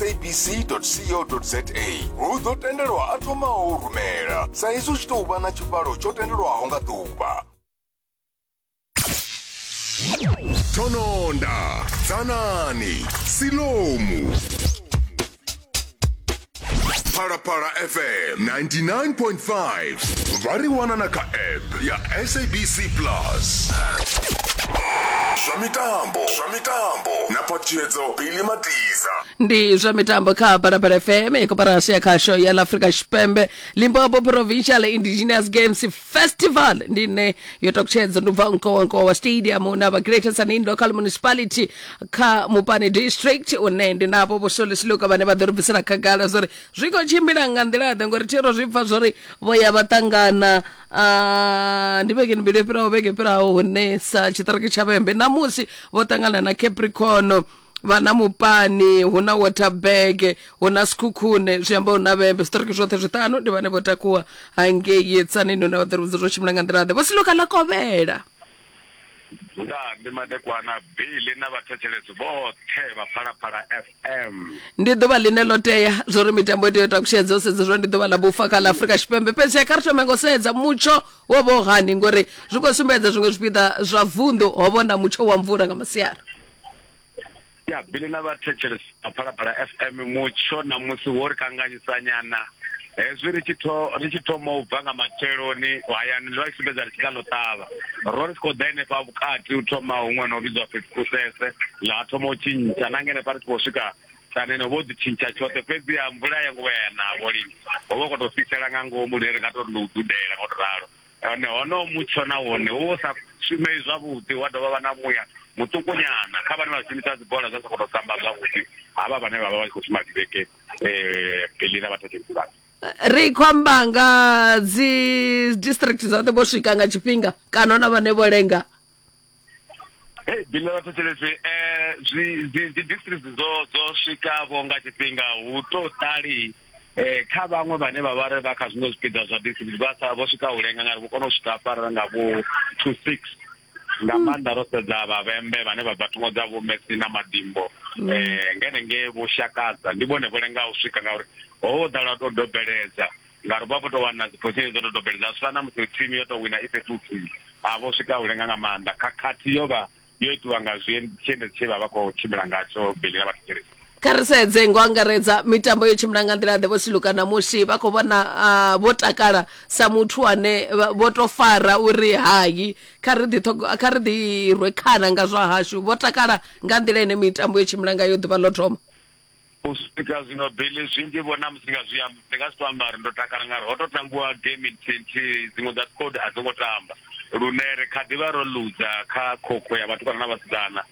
sabc.co.za hu ḓo tendelwa a thomaho u rumela sa izwi u tshi tou vha na tshivhalo tsho tendelwaho nga ḓuvha tononda dzanani silomu phalaphala fm 99.5 vha ri wana na kha app ya sabc plus zwa mitambo zwa mitambo na phaṱhutshedzo bili matiza ndi zwa mitambo kha barabara fm i koporasi ya khasho ya laafrika tshipembe limpopo provincial indigenous games festival ndi ine yo takutshedza ndi ubva nkowankowa stadium na vha greater sanin local municipality kha mupani district une ndi navho vhosolisiluka vhane vha ḓo ri bvisela khagala zwa uri zwi khou tshimbila nga nḓila-ḓe ngori thero zwi bva zwa uri vho ya vha ṱangana Ah, ndi vhege mbili yo fhiraho vhege fhiraho hune sa tshiṱiriki tsha vhembe namusi vho ṱangana na capricorn vha na mupani hu na waterberg hu na sikhukhune zwi amba hu na vhembe zwiṱiriki zwoṱhe zwiṱanu ndi vhane vho takuwa hangei tsanini hune vha ḓirudza zwo tshimbila nga nḓila ḓe vho siloka ḽa kovhela Ndaa ndi madekwana Billy na vhathetshelesi vhoṱhe vha Phalaphala FM. ndi ḓuvha ḽine ḽo tea zwo ri mitambo i tea u takushedza u sedza zwo ndi ḓuvha ḽa vhufa kha ḽa afurika tshipembe fhedzi kha ri thome ngo sedza mutsho wo vha u hani ngori zwi khou sumbedza zwiṅwe zwipiḓa zwa vunḓu ho vhona mutsho wa mvula nga masiari ya bili na vhathetshelesi a phalaphala fm mutsho na musi wo ri kanganyisanyana hezwi ri tshi ri tshi thoma u bva nga matsheloni hayani ri vha sumbedza ri tshi kha ḽo ṱavha ro ri si khou ḓa henefha vhukati u thoma huṅwe no vhidzwa fhethu kusese ḽa thoma u tshintsha na ngenefha ri tshi khou swika tanene vho ḓi tshintsha tshoṱhe fhedzi ya mvula ya nguvhaya navho lini ho vha khou tou fhisela nga ngomu ri ri nga tou ri ndo u dudela ngo to ralo Hone honoho mutsho na wone wo vha u sa shumei zwavhuḓi, wa dovha wa vha na muya muṱukunyana kha vhane vha shumisa dzibola dza sokou tou samba zwavhuḓi, havha vhane vha vha vha tshi khou shuma dibeke eh, bili na vhathetshelisi vhashu. ri khou amba nga dzi district dzoṱhe vho swika nga tshifhinga kana hu na vhane vho lenga Hey, bine vha thetshelesi eh zwi dzi dzi district dzo dzo swika vho nga tshifhinga hu to tali eh kha vhaṅwe vhane vha vha ri vha kha zwiṅwe zwipiḓa zwa district vha sa vho swika u lenga ngari vho kona u swika fara nga vho 2 6 nga maanḓa ro sedza vhavhembe vhane vha bva thungo dza vho Messi na Madimbo eh ngene nge vho shakadza ndi vhone vho lenga u swika ngauri ho ḓala to dobeledza ngauri vha vho tou wana dzi position dzo dodombele dza swika na musi team yo tou wina i fhethu huthihi a vho swika u lenga nga maanḓa khakhathi yo vha yo itiwa nga tshiendedzi tshe vha vha khou tshimbila ngatsho beli na vhathetshelesi kha ri sedze ngo angaredza mitambo yo tshimbila nga nḓila ḓe vho siluka na musi vha khou vhona ah, vho takala sa muthu ane vha- vho to fara uri hayi kha ri ḓi ṱhogo- kha ri ḓi rwe khana nga zwa hashu vho takala nga nḓila ine mitambo yo tshimbila ngayo ḓuvha ḽo thoma U swika zwino Billy, zwinzhi vho na musi nga zwi amba, ndi nga si to amba uri ndo takala ngauri ho to tambiwa game nthihi nthihi, dziṅwe dza squad a dzi ngo tamba lune ri kha ḓivha ro luza kha khokho ya vhatukana na vhasidzana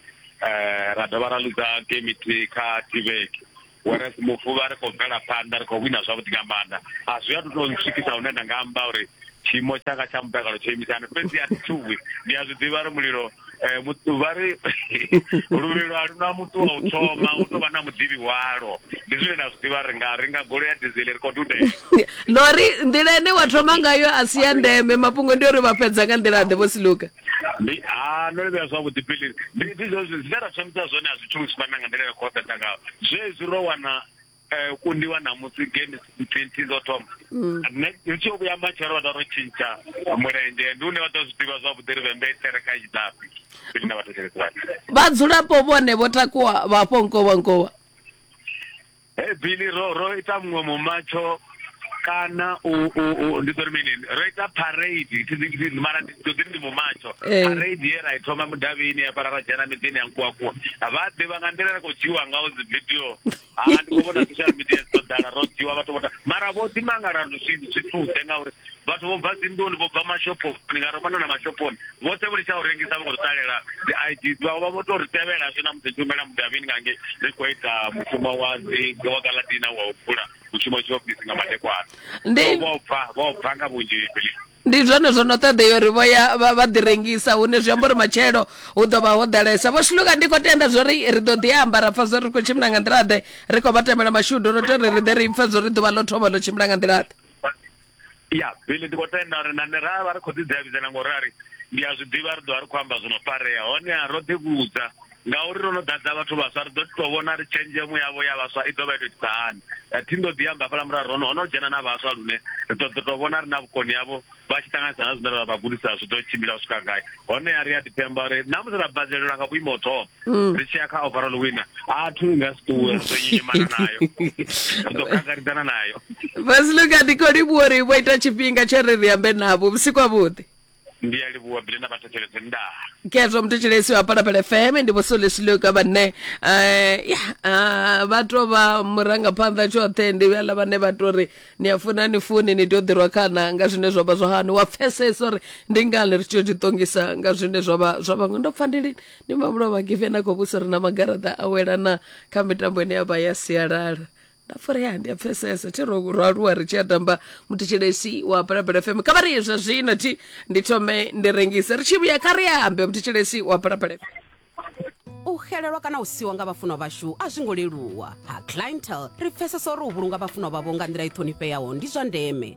ra dovha ra luza game nthihi kha thivheke whereas mufuvha ri khou bvela phanḓa ri khou wina zwavhuḓi nga maanḓa a zwi a to to ntswikisa hune nda nga amba uri tshiimo tshanga tsha mutakalo tsho imisana fhedzi a thi tshuwi ndi a zwi ḓivha ri mulilo eh, vha ri luvhilo a luna muthu wa u thoma u tou vha na muḓivhi walo ndi zwine na zwi ḓivha ri nga ri nga golo ya dizele ri khou dudela lori nḓila ine wa thoma ngayo a si ya ndeme mafhungo ndi uri vha fhedza nga nḓila ḓe vho si luka ndi a no livhea zwavhuḓi pili ndi zwine ra thomisa zwone a zwi tshuwi zwi fana nga nḓila ya khou ṱaṱa ngayo zwezwi ro wana eh, kundiwa namusi game twenty dzo thoma mm. ri tshi yo vhuya matshelo vha taro tshintsha mulenzhe ndi une vha ḓo zwi ḓivha zwavhuḓi ri vhembe thereka idapi ine vha thetshelesani vhadzulapo vhone vho takuwa vhafho nkovhankovha he bili ro ro ita muṅwe mumatsho kana u u u ndi tori mini ro ita parade thi thi mara ndi tori ndi mumatsho eh. parade ye ra ithoma mudavini ya fara ra dzhena miḓini ya nkuwa kuwa vha ḓivha nga nḓila ra kho dzhiwa nga dzi video ha ndi khou vhona social media dzo ḓala ro dziwa vhathu vho mara vho ḓi mangala zwithuze ngauri vhathu vho bva dzinḓuni vho bva mashophoni ni nga romana na mashophoni vhoṱhe vho litsha u rengisa vho ri ṱalela dzi i d vhawe vha vho to ri tevhela zwi na musi tshumela mudavhini ngange ri khou ita mushumo wa dzi wa galadina wa u bvula mushumo tshiofisi nga madekwana vho bva vho bva nga vhunzhi ndi zwone zwo no ṱoḓea uri vho ya vha vha ḓi rengisa hune zwi amba uri matshelo hu ḓo vha ho ḓalesa vho shuluka ndi khou tenda zwo ri ri ḓo ḓi amba ra pfa zwo ri khou tshimbila nga nḓilaḓe ri khou vha tamela mashudu ro tori ri ḓe ri pfe zwo ri ḓuvha ḽo thoma ḽo tshimbila nga nḓilaḓe ya bili ndi khou tenda uri nane ra vha ri khou ḓidzavhidzana ngori a ri ndi a zwi ḓivha ri ḓovha ri khou amba zwi no farea honeha ro ḓivhudza Ngauri ro no ḓadza vhathu vhaswa, ri ḓo ḓi tou vhona ri tshenzhemo yavho ya vhaswa i ḓo vha i tou itisa hani. Thi ndo ḓi amba hafhaḽa murahu, ro no, ho no dzhena na vhaswa lune ri ḓo ḓo tou vhona ri na vhukoni havho vha tshi ṱanganisa na zwine ra vha gudisa zwi ḓo tshimbila u swika gai. Honeha ri a ḓi pemba uri na musi ra badzelelwa nga vhuimo ho thoma, ri tshi ya kha overall winner, a thu i nga si ṱuwe, ri ḓo nyonyomana nayo. Ri ḓo kangaridzana nayo. Vhasluka, ndi khou livhuwa uri vho ita tshifhinga tsho ri ri ambe navho. Vhusiku havhuḓi. ndi a livhuwa bile na vhathetshelesi ndaa kezwo muthetshelesi wa palapala fm ndi vhosolesiloka vhane eh, ya, ah, vha to vha murangaphanḓa tshoṱhe ndi vhala vhane vha to ri ni a funa ni funi ni tea u ḓirwa khana nga zwine zwa vha zwa hani wa pfesesa uri ndi ngani ri tshi ḓiṱongisa nga zwine zwa vha zwa vhaṅwe ndo pfa ndi lini ndi mamulo vhagive na khou vhusa ri na magaraṱa a welana kha mitambo ine ya vha ya sialala nda farea ndi a pfesesa thi ro ro aluwa ri tshi a tamba muthetshelesi wa phalaphala fm kha vha ri zwa zwino thi ndi thome ndi rengise ri tshi vhuya kha ri ambe muthetshelesi wa phalaphala fm u xelelwa kana u siwa nga vhafunwa vhashu a zwi ngo leluwa ha clientel ri pfesesa uri u vhulunga vhafunwa vhavho nga nḓila i ṱhonifheaho ndi zwa ndeme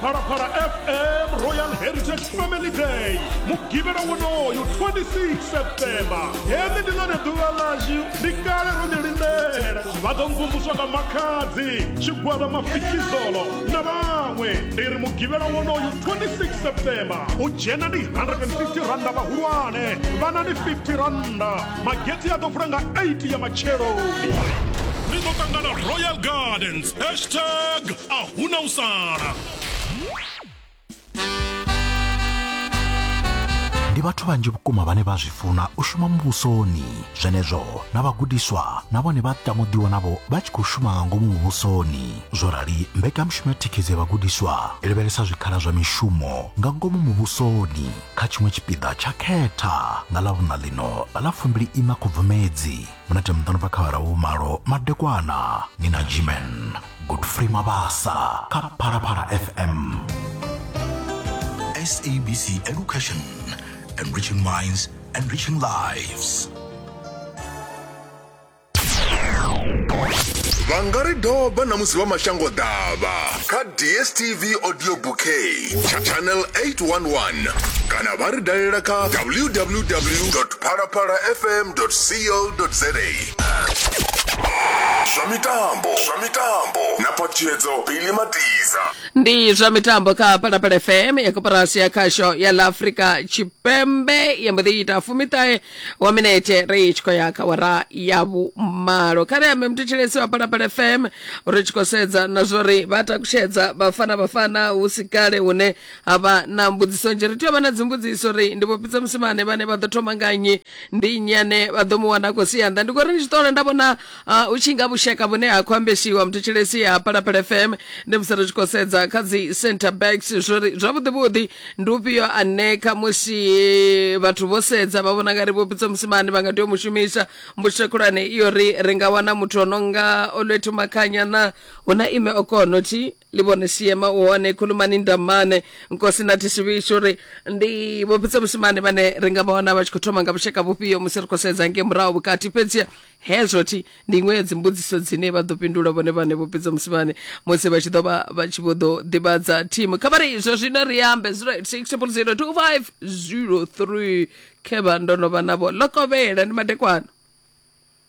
phalaphala fm royal heritage family day mugivhela wonoyo 26 septemba hene ndi lone ḓuvha ḽashu ndi kale ro ḽi lindela vha ḓo mvumvuswa nga makhadzi tshigwada mafikizolo na vhaṅwe ndi ri mugivhela wonoyo 26 septemba u dzhena ndi 150 randa vhahulwane vhana ndi 50 randa magetse a ḓo vula nga 8 ya matsheloni ri ḓo ṱangana royal gardens hashtag a huna u sala ndi vhathu vhanzhi vhukuma vhane vha zwi funa u shuma muvhusoni zwenezwo na vhagudiswa na vhone vha tamo ḓiwanavho vha tshi khou shuma nga ngomu muvhusoni zwo rali mbekanyamushumo ya thikhedzo ya vhagudiswa i lavhelesa zwikhala zwa mishumo nga ngomu muvhusoni kha tshiṅwe tshipiḓa tsha khetha nga ḽa vhuṋa ḽino nga ḽa fumbili ina khubvumedzi munete muḓani bva kha vhara vhu malo madekwana ni na jimen godfrey mabasa kha phalaphala fm sabc education enriching minds enriching lives vha nga ri doba na musi vha mashango ḓavha kha dstv audio bouquet tsha channel 811 kana vha ri dalela kha www phalaphala fm co za zwa mitambo zwa mitambo na phatshedzo bili matiza ndi zwa mitambo kha phalaphala fm ya koporasi ya khasho ya ḽa afrika tshipembe ya mbo ḓi ita fumiṱahe wa minete ri tshi khou ya kha wara ya vhumalo kha ri ambe muthetshelesi wa phalaphala fm ri tshi khou sedza na zwori vha takutshedza vhafana vhafana hu si kale hune ha vha na mbudziso nzhi ri tea u vha na dzimbudziso ri ndi vhopitsa musimane vhane vha ḓo thoma nga nnyi ndi nnyi ane vha ḓo mu wana a khou sia nnḓa ndi khou ri ndi tshi ṱola nda vhona Uh, u tshi nga vhushaka vhune ha khou ambesiwa mthetshelesi ya palapala fm ndi musi ri tshi khou sedza kha dzi center backs zwori zwavhuḓi vhuḓi ndi ufhio ane kha musi vhathu vho sedza vha vhona nga ri vhopitso musimane vha nga tea u mu shumisa mbutsho khulwane iyo ri ri nga wana muthu ono nga olwethu makhanya na hu na ime okono thi livhone siema u hone khulumani ndamane nkosi na thisivhishu uri ndi vhopitsa musimane vhane ri nga vhona vha tshi khou thoma nga vhushaka vhufhio musi ri khou sedza nge murahu vhukati fhedziha hezwo thi ndi iṅwe ya dzimbudziso dzine vha ḓo fhindula vhone vhane vhopitsa musimane musi vha tshi ḓo vha vha tshi vho ḓo ḓivhadza thimu kha vha ri izwo zwino ri ambe 0860025003 khevha ndo no vha navho lokovhela ndi madekwana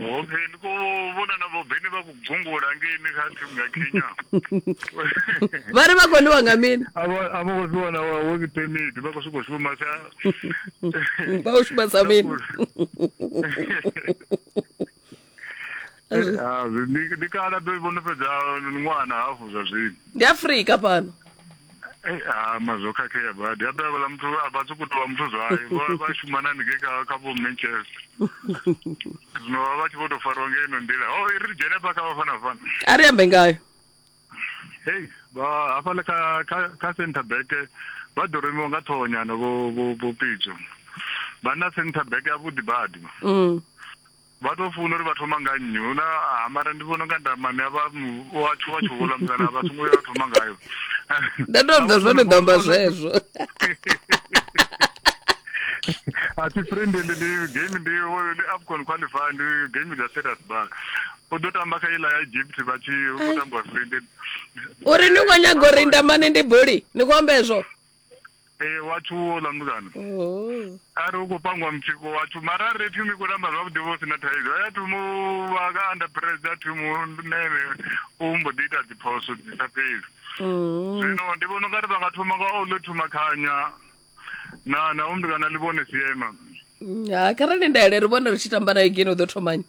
Okay, ndi khou vhona na vho Beni vha khou gungula ngeini kha thimu ya Kenya. Vha ri vha khou ḽiwa nga mini? A vho a vho khou zwi wana wa work permit vha khou sokou shuma sa Vha u shuma sa mini? Ah, ndi ndi kala ḓo vhono fhedza ṅwana hafhu zwa zwino. Ndi Afrika fhano. Eh, ha mazwo khakhea badi habe avhala muthu a vha sokou tovha muthu zwayo vha vha shumana haningei kha kha vho manchester zwino vha vha tshi vho tou fariwa nga ino nḓila o i ri dzhene hafha kha vhafana fana a ri ambe ngayo hei vha hafhaḽa kha kha kha center back vha ḓo remiwa nga ṱhohonyana vho vho vho pitso vha na center back yavhuḓi badi mm. Vha tou funa uri vha thoma nga nnyi hu na ha mara ndi vhona nga ndamane a vha mu wa tshuwa tshuwula musana vha songo ya thoma ngayo Nda ndo amba zwone ndo amba zwezwo. a thi friend ndi ndi game ndi wo- ndi afcon qualify ndi game dza status bar u ḓo tamba kha iḽa ya egypt vha tshi u tambiwa friend Uri ni kho nyaga uri ndamane ndi buli, ni kho amba ezwo. ee watshu wo ḽa mutukana Oh. a ri u khou pangiwa mutsiko watshu mara a ri thi mi khou tamba zwavhuḓi vho si na thaidzo a thu mu vha ka under pressure a thi mu nene u mbo ḓi ita dziphoso dzi sa fheli Mm. zwino ndi vhona ungari vha nga thoma nga o ḽo thoma khanya na na u mutukana ḽi vhone siema Ha kharali nda ele ri vhone ri tshi tamba nayo gene u ḓo thomani.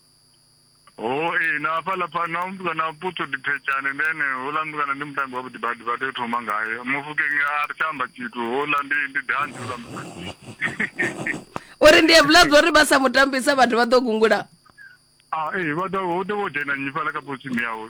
Hoi na hafhaḽa pfani na mutukana putso ndi phetshaane ndi ene houḽa mutukana ndi mutambi wavhuḓi badi vha tea u thoma ngaye mufukenge a ri tsha amba tshithu houḽa ndi ndi dandi houḽa mutukana uri ndi evhula zwo ri vha sa mutambisa vhathu vha ḓo gungula a ee vha ḓo hu ḓo vho dzhena nyi fhaḽa kha posimi yawe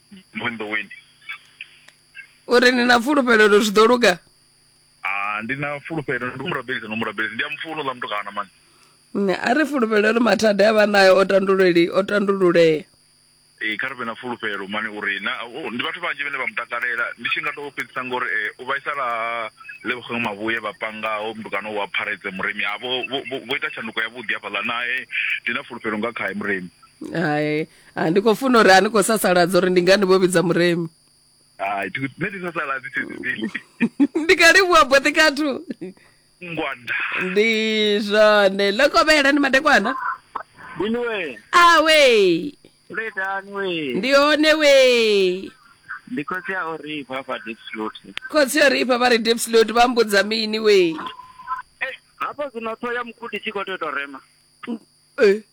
vunḓuwini uri ni na fulufhelo uri zwi ḓo luga Ah, ndi na fulufhelo ndi murabelisi no murabelisi ndi a mufuno ḽa mutukana mani Nṋe a ri fulufhelo uri mathada a vha nayo o tanduleli o tandululea ee kha ri vhe na fulufhelo mani uri na oh, ndi vhathu vhanzhi vhane vha mu takalela ndi tshi nga tou fhedzisa ngori eh, u vhaisala lebogang mavhuye vha pangaho mutukana wa pharetse murimi a vho vho- vho- vho ita tshanduko yavhuḓi hafhaḽa nae ndi na fulufhelo nga khae murimi hai Ah, ndi khou funa uri a ni khou sasaladza uri ndi ngani vho vhidza muremi hai thi- nṋe ndi sasaladzi thezibili ndi ka livhuwa boṱhe kathu ngwanda ndi zwone ḽo kovhela ni madekwana Bini we, awe letani we. ndi hone we Ndi khotsi ya uri bva fa deep throat. khotsi yo ri ifha vha ri dipslot vha mbudza mini we Eh, hafha zwino ṱhoho ya mukudi tshi khou tea u tou rema. Eh,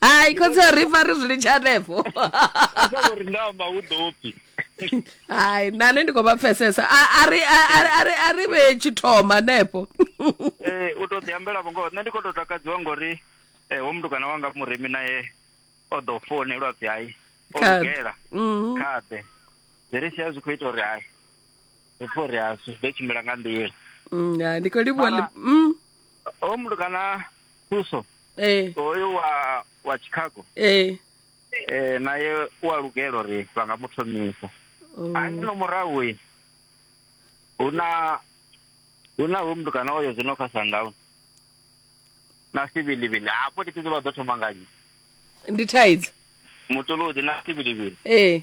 hai khotsi ri fa ri zwi litsha hanefho uri ndamba hu ḓo pfi hai nane ndi khou vha pfesesa a ri vhe tshithoma hanefho eh, u tou ḓiambela vho ngoho nṋe ndi khou tou takadziwa ngori um eh, wo mutukana wanga murimi naye o ḓo founelwa pfi hai o lugela mhm. khaḓe zwi ri sia zwi khou ita uri hai ri pfhe uri a zwi ḓo tshimbila nga nḓila mm, ndi khou livhuwa mm. o mutukana Thuso ee hoyu wa wa Chicago ee eh naye u a lugela uri vha nga mu thomisa Oh. ani no murahu uyu hu na hu na hoyu muthu kana oyo zwino kha sundown na sivilivili hafho ndi vha ḓo thoma nga nnyi ndi thaidzo mutolodi na sivilivili ee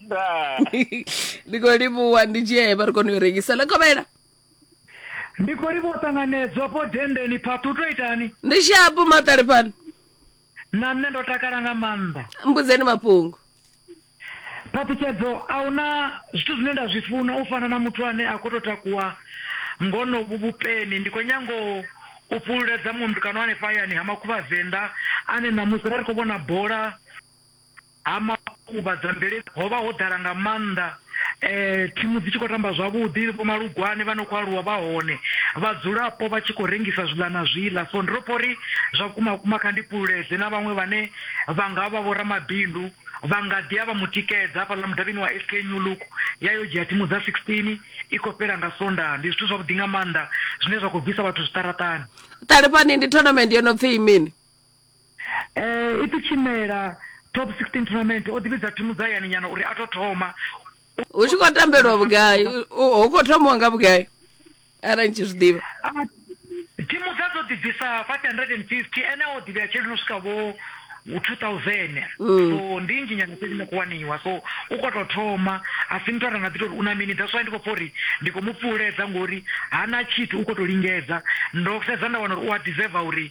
Ndaa. ndi khou livhuwa ndi dzhia he vha ri kone u i rengisa ḽa kovhela ndi khou livhuwa ṱanganedzwa po dendeni phaṱhu u to itani ndi shapu maṱali fhano na nṋe ndo takala nga maanḓa mbudzeni mafhungo phaṱhutshedzo a huna zwithu zwine nda zwi funa u fana na muthu ane a khou tou takuwa ngonovhu vhupeni ndi khou nyango u fhululedza mundu kana hanefha hayani ha makhuvha venḓa ane ṋamusi ra ri khou vhona bola Ha makhuvha dza mvelele ho vha ho ḓala nga maanḓa, thimu dzi tshi khou tamba zwavhuḓi, vho Malugwane vha no khou aluwa vha hone, vhadzulapo vha tshi khou rengisa zwiḽa na zwiḽa. So ndi tou pfa uri zwa vhukuma vhukuma kha ndi fhululedze na vhaṅwe vhane vha nga vha vhoramabindu vha nga ḓi ya vha mu tikedza hafhaḽa mudavhini wa SK New Look ya yo dzhia thimu dza 16 i khou fhela nga Sondaha. Ndi zwithu zwavhuḓi nga maanḓa zwine zwa khou bvisa vhathu zwiṱaraṱani. Ṱalifhani ndi tournament yo no pfi mini? E, i ḓi tshimela Top 16 Tournament o ḓivhidza thimu dza hayani nyana uri a to thoma hu tshi khou tambelwa vhugai U- hu khou thomiwa nga vhugai arali ni tshi zwi ḓivha Ah, thimu dza dzo ḓi bvisa 550 ene o ḓivhea tshelede no swika vho 2000 Mm. so ndi nnzhi nyana tshelede no khou waniwa so u khou tou thoma a si muthu a nga ḓi tori u na mini that's why ndi khou pfa uri ndi khou mu pfuuledza ngori hana tshithu u khou tou lingedza ndo sedza nda wana uri u a deserve uri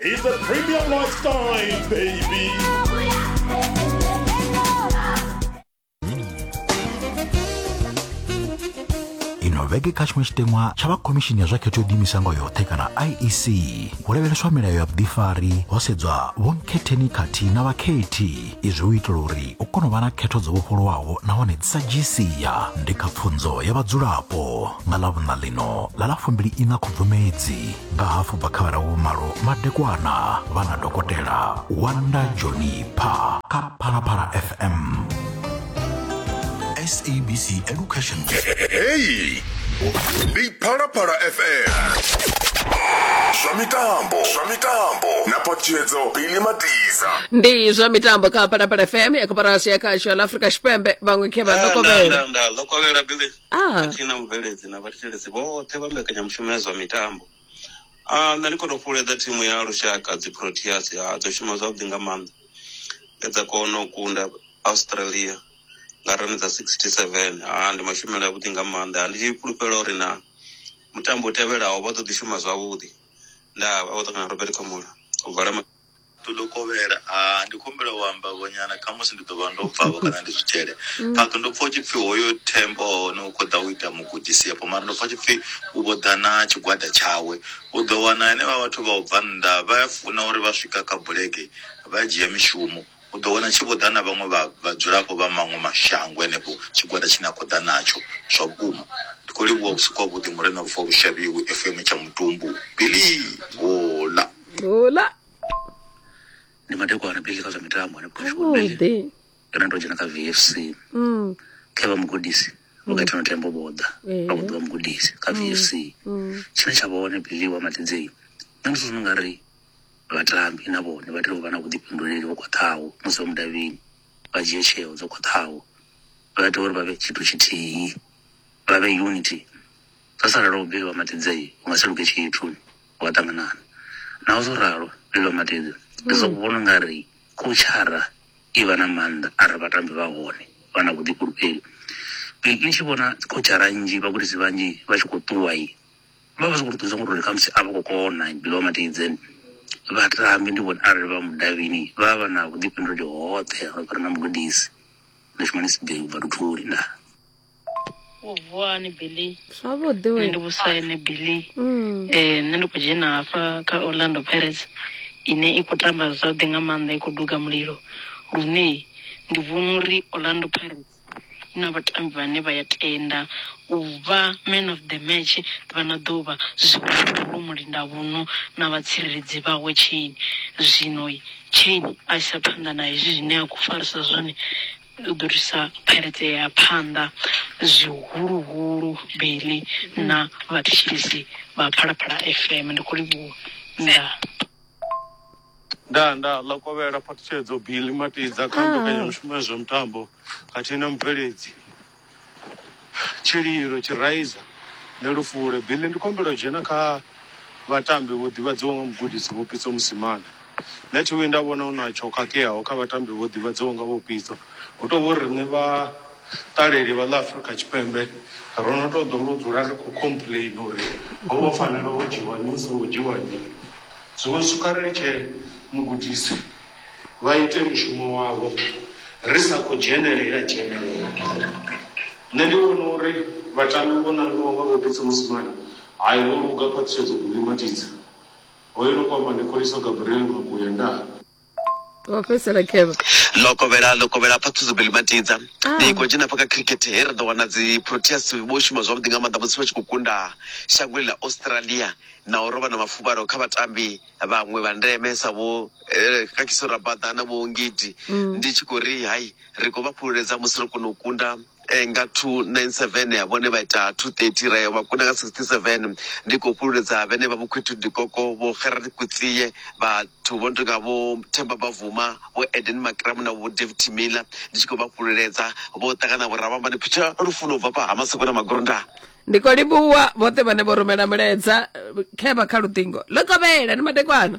It's a premium lifestyle, baby. ino vhege kha tshiṅwe tshiteṅwa tsha vha khomishini ya zwa khetho yo diimisango yoṱhe kana iec hu lavheleswa milayo ya vhuḓifari ho sedzwa vhonkhetheni khathihi na vhakhethi izwi u itela uri u kone u vha na khetho dzo vhofholowaho nahone dzi sa dzhii sia ndi kha pfunzo ya vhadzulapo nga ḽa vhuṋa ḽino ḽa ḽa fumbili ina khubvumedzi nga hafu bva kha vhara vhumalo madekwana vha na dokotela wanda joni pha kha phalaphala fm sabc education heyi ndi phalaphala fm zwa mitambo zwa mitambo na patshedzo bili matiza ndi zwa mitambo kha phalaphala fm ya koporasi ya khasho la afrika tshipembe vhaṅwe khe vha ḓo kovhela nda ḓo kovhela bili khathihi na mubveledzi na vhathetshelesi vhoṱhe vha mbekanyamushumo ya zwa mitambo. A nṋe ndi khou tou fhululedza thimu ya lushaka dzi Proteas ha dzo shuma zwavhuḓi nga maanḓa nge dza kona u kunda Australia nga rani dza 67. Ha ndi mashumele avhuḓi nga maanḓa. Ha ndi tshi fhulufhela uri na mutambo u tevhelaho vha ḓo ḓi shuma zwavhuḓi. Ndaa, vha vho ṱangana na Robert Khumalo u vala. to ḓo kovhela ah ndi khumbela u amba vho nyana khamusi ndi ḓo vha ndo bva vho kana ndi zwi tshele phakh ndo pfha u tshi pfhi hoyo thembo hone u khou ḓa u ita mugudisi afho mara ndo pfha u tshi pfhi u vho ḓa na tshigwada tshawe u ḓo wana henevha vhathu vha u bva nnḓa vha ya funa uri vha swika kha bulege vha dzhia mishumo U ḓo wana tshi vho ḓa na vhaṅwe vha vhadzulapo vha maṅwe mashango henefho, tshigwada tshine a khou ḓa natsho. Zwa vhukuma. Ndi khou livhuwa vhusiku havhuḓi, Murena Lufuwa lu shavhiwi, FM tsha mutumbu. Billy! Hola! Hola! Ndi madekwana Billy kha zwa mitambo hanefho kha Shuwa Billy. Vhuḓi. Ndo no tou dzhena kha VFC. Mm. Kha vha mugudisi. Vho kha Thano Tembo vho ḓa. Ee. Vha vho ḓivha mugudisi kha VFC. Tshine tsha vha hone Billy wa Matidzei. Nṋe ndi zwino nga ri vhatambi na vhone vha tea u vha na vhuḓifhinduleli ho khwaṱhaho musi vha mudavhini vha dzhie tsheo dzo khwaṱhaho vha tea uri vha vhe tshithu tshithihi vha vhe unity zwo sala lwa vhuvhili vha matidze u nga si luge tshithu wa ṱanganana naho zwo ralo vhuvhili vha matidze ndi zwo vhona nga ri khotshara i vha na maanḓa arali vhatambi vha hone vha na vhuḓifhulufheli ni tshi vhona khotshara nnzhi vhagudisi vhanzhi vha tshi khou ṱuwa i Vha vha zwi khou ṱuwisa ngori khamusi a vha khou kona below matidze vhatambi ndi vhone arali vha mudavhini vha vha na vhuḓifhinduleli hoṱhe ro fhira na mugudisi ndi shumani sibei ubva luthuli ndaa wo vuwa hani billy zwavhuḓi nṋe we ndi vhusaine billy Mm. eh nṋe ndi khou dzhena hafha kha orlando pirates ine i khou tamba zwavhuḓi nga maanḓa i khou duga mulilo lune ndi vhona uri orlando pirates hu na vhatambi vhane vha ya tenda u vha man of the match vha no ḓo vha zwihuluhulu mulindavhuno na vhatsireledzi vhawe Chaine. Zwino Chaine a isa phanḓa na hezwi zwine a khou farisa zwone u ḓo thusa Pirates ya ya phanḓa zwihuluhulu Billy na vhathetshelesi vha Phalaphala FM. Ndi khou livhuwa. Ndaa. Ndaa, ndaa, ḽa kovhela phaṱhutshedzo Billy Matidza kha mbekanyamushumo ya zwa mitambo khathihi na mubveledzi Tshililo Tshiraiza Nṋe Lufule Billy ndi khombela u dzhena kha vhatambi vho ḓivhadziwa nga mugudisi Vho Pitso Mosimane Nṋe thi vhuyi nda vhona hu na tsho khakheaho kha vhatambi vho ḓivhadziwa nga Vho Pitso hu tou vhori riṋe vha Ṱaleli vha ḽa Afrika Tshipembe ro no tou ḓo ngo dzula ri khou complainer uri ho vho fanela ho dzhiwa nnyi hu songo dzhiwa nnyi. Zwiṅwe zwithu kha ri litshe mugudisi vha ite mushumo wavho ri sa khou dzhenelela dzhenelela. Nṋe ndi vhona uri vhatambi vho nangiwaho nga Vho Pitso Mosimane hai vho luga khwaṱhisedzo Bully Matidze, hoyu no khou amba ndi Kholiso Gabriel Makuya ndaa. wa fhedzisela kevha lokovhela lokovhela pfa thuzo beli matidza ah. ndi khou dzhena paka cricket he ri ḓo wana dzi proteas vho shuma zwavhuḓi nga maanḓa musi vha tshi khou kunda shangoni ḽa australia na u rovha na mafuvhalo kha vhatambi vhaṅwe vha ndeme sa vho eh, kakiso rabada na vho ngidi mm. ndi tshi khou ri hai ri khou vha fhululedza musi ro kona u kunda eh, nga 297 ya vhone vha ita 230 ra yo vha kuna nga 67 ndi khou fhululedza vhene vha vhokhwithu dikoko vho gerard kutsiye vhathu vho no tonga vho themba bavuma vho eden makramu na vho david timila ndi tshi khou vha fhululedza vho ṱangana vho ravhambani phitha lufuno u bva pa hamasoko na magorondana ndi khou livhuwa vhoṱhe vhane vho rumela mulaedza eh, khevha kha luṱingo ḽo kovhela ni madekwana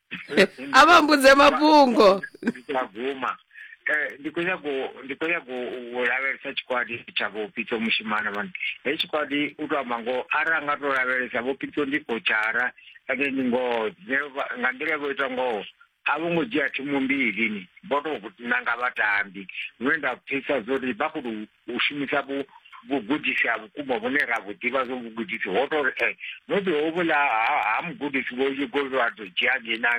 avambudze mafhungo ndikaguma Eh, ndi khou nyaga u- ndi khou nyaga u u lavhelesa tshikwadi tsha vho pitso mushimana mani hei tshikwadi u to amba ngoho ara a nga to lavhelesa vho pitso ndi kochara ende ndi ngoho Nṋe vha- nga nḓila vho ita ngoho a vho ngo dzhia thimu mbili ni vho to nanga vhatambi lune nda pfisa zwo ri vha khou tou u shumisa vhu vhugudisi ha vhukuma vhune ra vhu ḓivha zwo vhugudisi ho tou ri e eh, maybe hovhuḽa ha mugudisi vho yugo vha tou dzhia ngena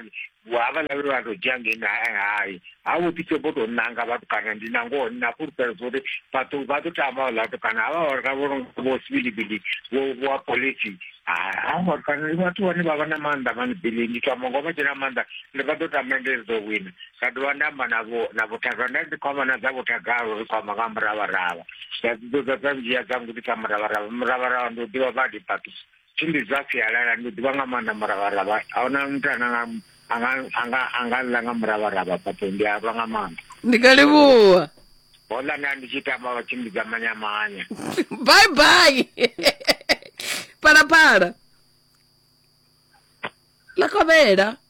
havhaḽa vhe vha tou dzhia ngena eh, hai ha vho ḓi sobo tou nanga vhatukana ndi na ngoho ndi na fhulufhelo zwa uri vhathu vha ḓo tama vhaḽa vhatukana havha vhatukana vho nonga vho sivilivili vho vha polisi ha vhatukana ndi vhathu vhane vha vha na maanḓa mani bili ndi tama ngo vha tshena maanḓa ndi vha ḓo tama ndi ri ḓo wina nda dovha nda amba na vho na vhuthaga nda dzi khoma na dza vhuthaga ro ri khoma nga muravharavha nda dzi ḓodza dza ndzhia dza ngudisa muravharavha muravharavha ndi u ḓivha badi papi tshimbi dza sialala ndi ḓivha nga maanḓa muravharavha a huna muthu ane anga anga anga anga ḽa nga muravharavha papi ndi a lwa nga maanḓa ndi nga livhuwa hola nda ndi tshi tamba vha tshimbidza manyamanya bye bye phalaphala ḽa kovhela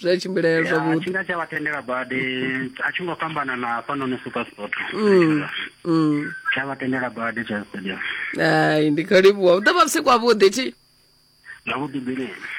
zwi a tshimbilea zwavhuḓi tshi nga tsha vha tendela badi a tshi ngo fhambana na hafhanoni super sport mm, mm. tsha vha tendela badi tsha stadium ai ndi khou livhuwa u ḓo vha vhusiku havhuḓi thi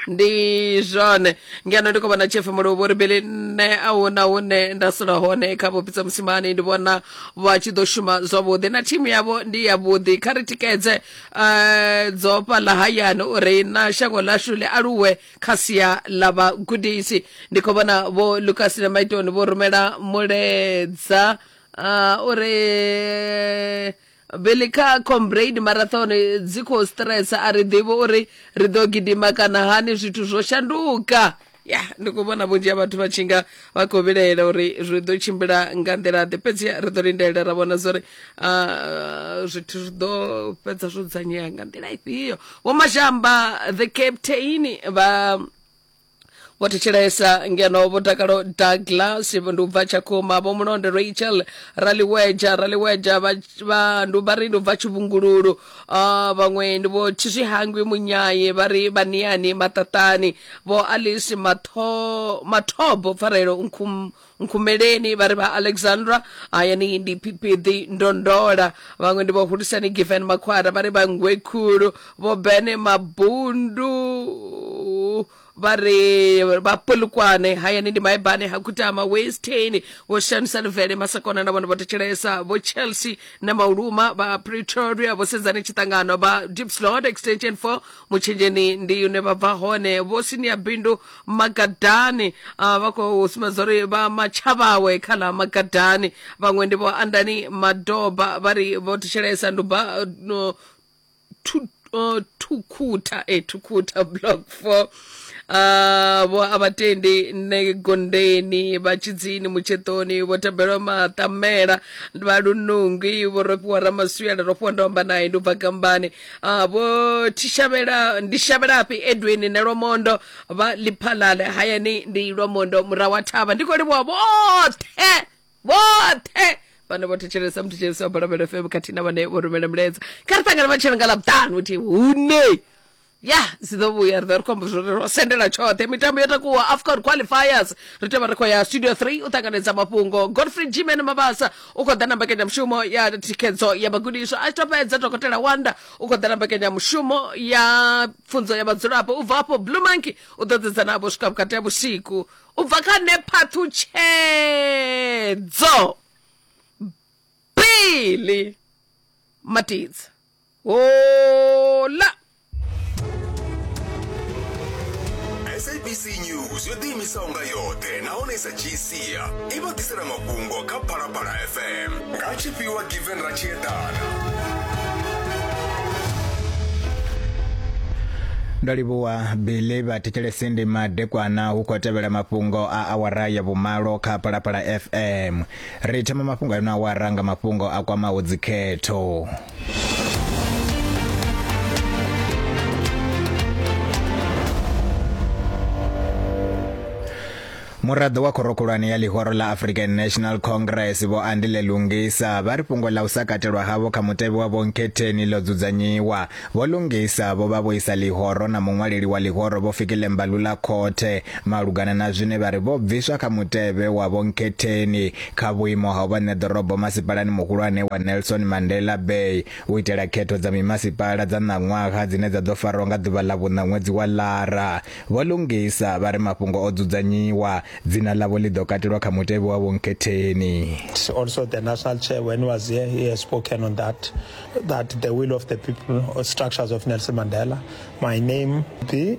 ndi zwone ngeno ndi khou vhona chefe muluvhu uri bili nṋe a hu na hune nda sula hone kha vhopitsa musimani ndi vhona vha tshi ḓo shuma zwavhuḓi na thimu yavho ndi yavhuḓi kha ri tikedze um eh, dzofha ḽa hayani uri na shango ḽashu ḽi aluwe kha sia ḽa vhagudisi ndi khou vhona vho lucas na maitoni vho rumela muledza uh, uri bili kha combrade marathon dzi khou stress a ri ḓivhi uri ri ḓo gidima kana hani zwithu zwo shanduka ya ndi khou vhona vhunzhi ha vhathu vha tshi nga vha khou vhilaela uri zwi ḓo tshimbila nga nḓila ḓe fhedzi ri ḓo lindela ra vhona zwa uri ah, zwithu zwi ḓo fhedza zwo dzudzanyea nga nḓila ifhio vho mashamba the captain vha vho thetshelesa ngeno vho dakalo douglas ndi u bva tshakhuma vho mulonde rachel raliweja raliweja vha- vha- ndi vha ri ndi u bva tshivhungululu Ah, vhaṅwe ndi vho tshizwihangwi munyaye vha ri vhaniyani maṱaṱani vho alice Matho- mathobo pfarelo Nkhum- nkhumeleni vha ri vha alexandra hayani ndi phipiḓi ndondola vhaṅwe ndi vho hulisani given makhwara vha ri vha ngwe khulu vho bene mabundu vha ri vha polukwane hayani ndi maibane ha khutama westeni vho shanisa luvele masakona na vhone vho thetshelesa vho chelsea na mauluma vha pretoria vho sedzani tshiṱangano vha dipslot extension 4 mutshenzheni ndi une vha bva hone vho sinia bindu magadani uh, vha khou sumbedza uri vha matshavhawe kha ḽa magadani vhaṅwe ndi vho andani madoba vha ri vho thetshelesa nduba no thu- uh, thukhutha e thukhutha block four uh, vho a vhatendi ne gondeni vha tshidzini mutshetoni vho tabelwa maṱamela vha lunungwi vho rofhiwa ramaswiela rofhiwa ndomba naye ndi u bva kambani Ah, vho tishavhela ndi shavhelafhi edwin ne lwamondo vha liphalale hayani ndi lwamondo murahu wa thavha ndi khou livhuwa vhoṱhe vhoṱhe vhane vho thetshelesa muthetshelesi wa balabela fm khathihi na vhane vho rumela milaedza kha ri ṱangana matshelo nga ḽavhuṱanu uthi hune ya zwi ḓo vhuya ri ḓo ri khombo zwo ro sendela tshoṱhe mitambo yo takuwa afcon qualifiers ri tea vha ri khou ya studio 3 u ṱanganedza mafhungo godfrey gman mabasa u khou ḓa na mbekanyamushumo ya thikhedzo ya vhagudiswa a tshi to fhedza dokotela wanda u khou ḓa na mbekanyamushumo ya pfunzo ya vhadzulapo u bva afho blue monkey u ḓo ḓedza navho swika vhukati ha vhusiku u bva kha nephaṱhutshedzo bili matidza Hola! sabc news yo ḓiimisaho nga yoṱhe nahone sa tshi sia i vha ḓisela mafhungo kha phalaphala fm nga tshifhiwa given ra tshi eḓana ndo livhuwa bili vha thetshelesi ndi madekwana hu khou tevhela mafhungo a awara ya vhumalo kha phalaphala fm ri thoma mafhungo a ino awara nga mafhungo a kwamaho dzikhetho muraḓo wa khorokhulwane ya ḽihoro ḽa african national congress vho andile lungisa vha ri fhungo ḽa u sa katelwa havho kha mutevhe wa vhonkhetheni ḽo dzudzanyiwa vho lungisa vho vha vho isa ḽihoro na muṅwaleli wa ḽihoro vho fikile mbalula khothe malugana na zwine vha ri vho bviswa kha mutevhe wa vhonkhetheni kha vhuimo ha u vha ṋeḓorobo masipalani muhulwane wa Nelson Mandela Bay u itela khetho dza mimasipala dza ṋaṅwaha dzine dza ḓo farwa nga ḓuvha ḽa vhuṋa ṅwedzi wa Lara. Vho Lungisa vha ri mafhungo o dzudzanyiwa, dzina ḽavho ḽi ḓo katelwa kha mutevhe wa vhonkhetheni. Also the national chair when he was here he has spoken on that that the will of the people or structures of Nelson Mandela my name the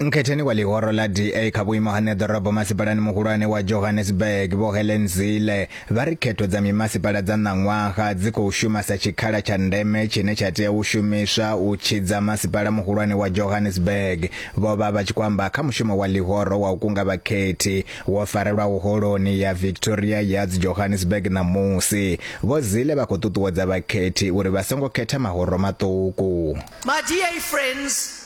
Nkhetheni wa ḽihoro ḽa DA kha vhuimo ha ṋeḓorobo masipalani muhulwane wa Johannesburg, Vho Helen Zille, vha ri khetho dza mimasipala dza ṋaṅwaha dzi khou shuma sa tshikhala tsha ndeme tshine tsha tea u shumiswa u tshidza masipala muhulwane wa Johannesburg. Vho vha vha tshi khou amba kha mushumo wa ḽihoro wa u kunga vhakhethi wo farelwaho Holoni ya Victoria Yards Johannesburg ṋamusi. Vho Zille vha khou ṱuṱuwedza vhakhethi uri vha songo khetha mahoro maṱuku. My DA friends,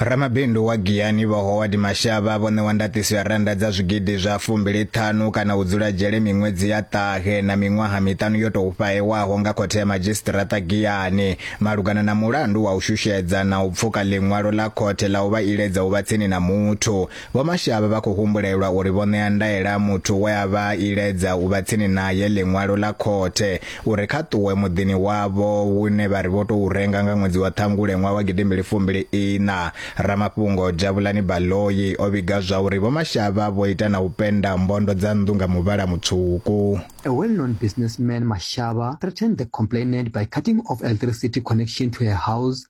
Ramabindu wa Giyani Vho Howard Mashaba vho ṋewa ndaṱiso ya rannda dza zwigidi zwa fumbili ṱhanu kana u dzula dzhele miṅwedzi ya ṱahe na miṅwaha miṱanu yo tou fhahewaho nga Khothe ya Madzhisiṱiraṱa Giyani malugana na mulandu wa u shushedza na u pfuka ḽiṅwalo ḽa khothe ḽa u vha iledza u vha tsini na muthu Vho Mashavha vha khou humbulelwa uri vho ṋea ndaela muthu we a vha iledza u vha tsini naye ḽiṅwalo ḽa khothe uri kha ṱuwe muḓini wavho wune vha ri vho tou renga nga ṅwedzi wa Ṱhangule ṅwaha wa gidimbili fumbili iṋa. Ramafhungo Jabulani Baloyi o vhiga zwa uri Vho Mashavha vho ita na u penda mbondo dza nnḓu nga muvhala mutswuku. A well-known businessman, Mashava, threatened the complainant by cutting off electricity connection to her house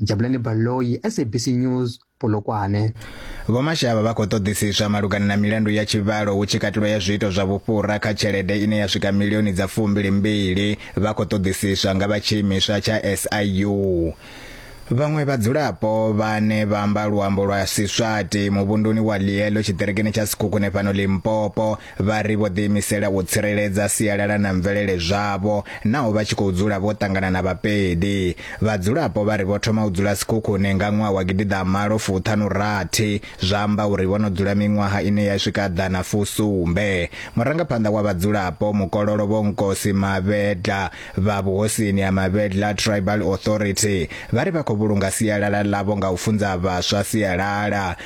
jabulani baloyi sabc news polokwane vho mashavha vha khou ṱoḓisiswa malugana na milandu ya tshivhalo hu tshi katelwa ya zwiito zwa vhufhura kha tshelede ine ya swika milioni dza fumbili mbili vha khou ṱoḓisiswa nga vha tshiimiswa tsha siu Vhaṅwe vhadzulapo vhane vha amba luambo lwa Siswati muvhunduni wa Lielo tshiṱirikini tsha Sekhukhune fhano Limpopo Vha ri vho ḓiimisela u tsireledza sialala na mvelele zwavho naho vha tshi khou dzula vho ṱangana na Vhapedi. Vhadzulapo vha ri vho thoma u dzula Sekhukhune nga ṅwaha wa gidiḓaamalo fuṱhanu rathi, zwa amba uri vho no dzula miṅwaha ine ya swika ḓana fusumbe. Murangaphanḓa wa vhadzulapo, Mukololo Vho Nkosi Mavhedla vha vhuhosini ha Mavhedla Tribal Authority vha ri vha khou vhulunga sialala ḽavho nga u funza vhaswa sialala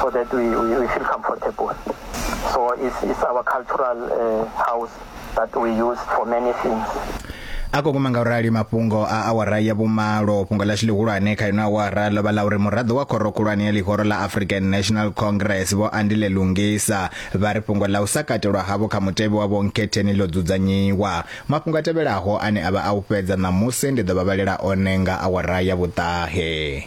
so that we, we, we feel comfortable. So it's, it's our cultural uh, house that we use for many things. a khou guma nga u rali mafhungo a awara ya vhumalo fhungo ḽashu ḽihulwane kha ino awara ḽo vha ḽa uri muraḓo wa khoro khulwane ya ḽihoro ḽa african national congress vho andile lungisa vha ri fhungo ḽa u sa katelwa havho kha mutevhe wa vhonkhetheni ḽo dzudzanyiwa mafhungo a tevhelaho ane a vha a u fhedza ṋamusi ndi ḓo vha vhalela one nga awara ya vhuṱahe